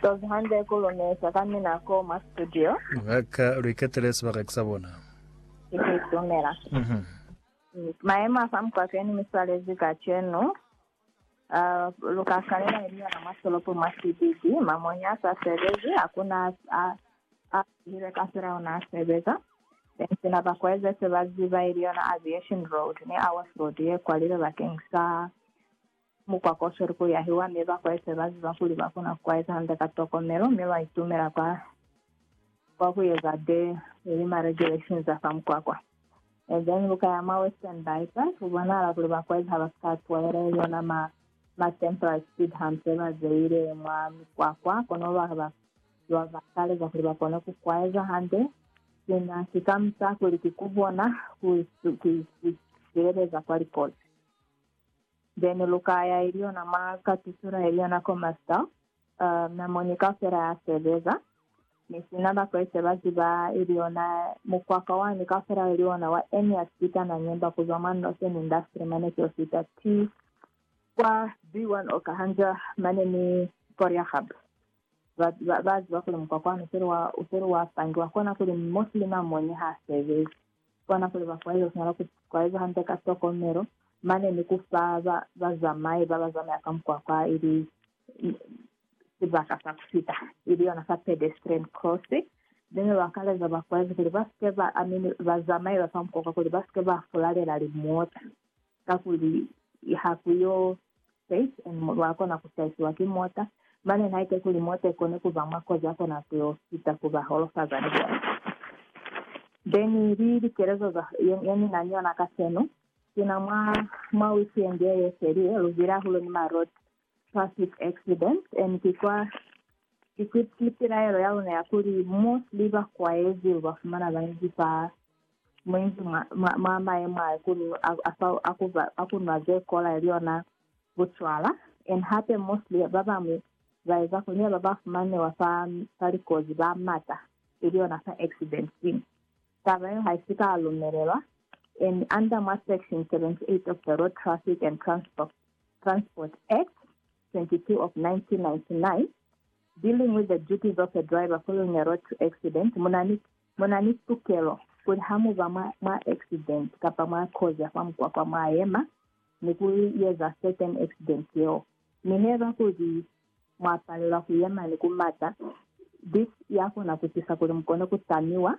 Tozi hande ku lumesa ka mina ko mwa studio. Ba ka lu iketele sibaka ki sa bona. Ki ku itumela. Mhm. Mayemo a fa mukwakeni mi swalezi kacenu, a lu ka swanela ni linyana mwa tolopo mwa sibiki. Mamonya a sa sebezi, hakuna a a zihile kafela ona a sebeza. Then sina ba kweze se ba ziba ili yona Aviation Road ni Awarsford ye kwalilwe bakeng sa. Mukwa ko sweli ku yahiwa, mi ba kwaise ba ziba kuli ba kona ku kwaisa hande ka tokomelo, mi ba itumela kwa, kwa ku eza de lilima le directions za fa mukwakwa. And then lu ka ya mwa Western Bypass, ku bonahala kuli ba kwaisa ha ba si ka twaela yona ma, ma temporary speed humps ze ba zeile mwa mikwakwa, kono ba, ba, ba ba kaleza kuli ba kone ku kwaisa hande. Sina si ka mu taha kuli ki ku bona ku, ku, ku, ku sibeleza kwa likozi. Then lukaya ilyo na mwa katusula ilyo na ko master, uh, na moni kaufela ya sebeza. Mi sina ba Kreste ba ziba ilyo na mukwaka wani kaufela ili ona wa eni ya sika na nyemba kuzwa mwa Northern Industry mane kio sita T kwa B1 oka hanja mane ni Koriagab. Ba, ba, ba ziba kuli mukwaka wani useli wa, useli wa pangiwa kona kuli Muslim a moni ha sebezi. Kona kuli ba fwaile kuswala ku kwaeza hande ka tokomelo mane ni ku fa ba bazamai ba ba zamaya ka mukwakwa ili sibaka sa ku fita, ili yona sa pedestrian crossing. Mi ne ba kaleza ba kwaezi kuli ba si ke ba, I mean, bazamai ba fa mukwakwa kuli ba si ke ba fulalela limota. Kakuli ha ku yo safe and mulu a kona ku saisiwa ki mota, mane haike kuli mota i kone ku ba mwa kozi a kona ku yo fita ku ba holofaza ni bona. Then li likelezo za ye ni na ni yona kacenu, sina mwa, mwa weekend ye ye felile, lu zwile hahulu ni ma road traffic accidents and ki kwa equipped li pilaelo ya luna ya kuli mostly ba kwaezi lu ba fumana ba inzi fa muinzi mwa, mwa, mwa maemo a kuli a, a, fa, a, ku, a ku nwa ze kola ili yona bucwala and hape mostly ba bamwi ba eza kuli ne ba ba fumanewa fa, fa likozi ba mata ili yona fa accident sini. Taba yeo ha isi ka lumelelwa and under mwa section 78 of the Road Traffic and Transport Transport Act 22 of 1999, Dealing with the Duties of a Driver Following a Road to Accident, munani tukelo kuli hamuba mwa accident kapa mwa kozi ya fa mukwakwa mwayema ni kuyeza certain accident yeo. Mi heba kuli mwapalelwa kuyema ni kumata, this yakona kutisa kuli mukone kutamiwa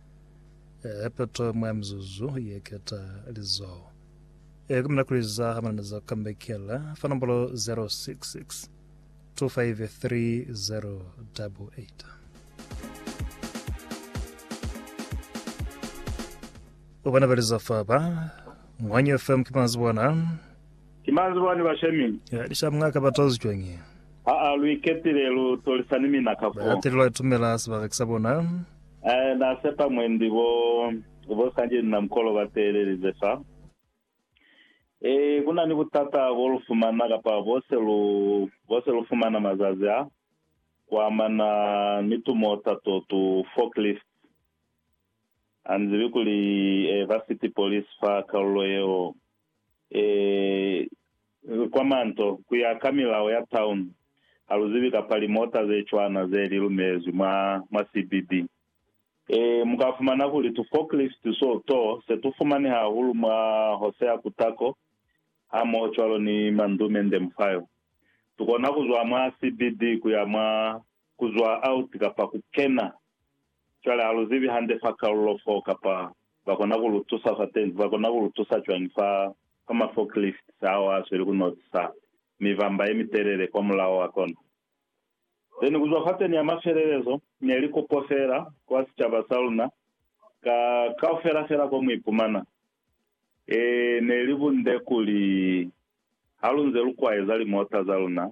Eh, poto mwa mizuzu ye keta lizoho. Eh, kumina kuliza ha manana za kambekela, fa nombolo 066 253 Ubana baliza fa ba, Mwanyi FM kimanzi bona, Ki mañi ze bwani ba shemile? Ki lika mwa ka ba tozi cwañi? Ha a lu iketile, lu tolisa ni mina ka foo. Baetele lwa itumela sibaka ki sa bona. Ee, na sepa mwendi bo, bo sanje ni na mukolo ba teelelize fa. Ee, ku na ni butata bo lu fumana, kapa bo se lu, bo se lu fumana mazazi a, ku amana ni tumota to, tu forklift. Ha ni zibi kuli, ee, ba city police fa kalulo yeo. Ee, kwa manto, ku ya ka milao ya town, ha lu zibi kapa limota ze cwana ze li lumelezwi mwa, mwa CBB. Ee, mu ka fumana kuli tu forklift so to se tu fumani hahulu mwa hose ya kutako, hamohocwalo ni mandumende muf'ayo. Tu kona ku zwa mwa CBB ku ya mwa, ku zwa out kapa ku kena Cwale ha lu zibi hande fa kalulo foo kapa ba kona ku lu tusa fatezi. Ba kona ku lu tusa cwañi fa, fa ma forklifts ao a zweli ku notisa mibamba ye mitelele kwa mulaho wa kona? Then kuzwa fateni ya mafelelezo ne li kopo fela kwa sicaba sa luna, ka, kaufela fela ko mu ipumana. Ee, ne li bunde kuli, halunze lu kwaeza limota za luna,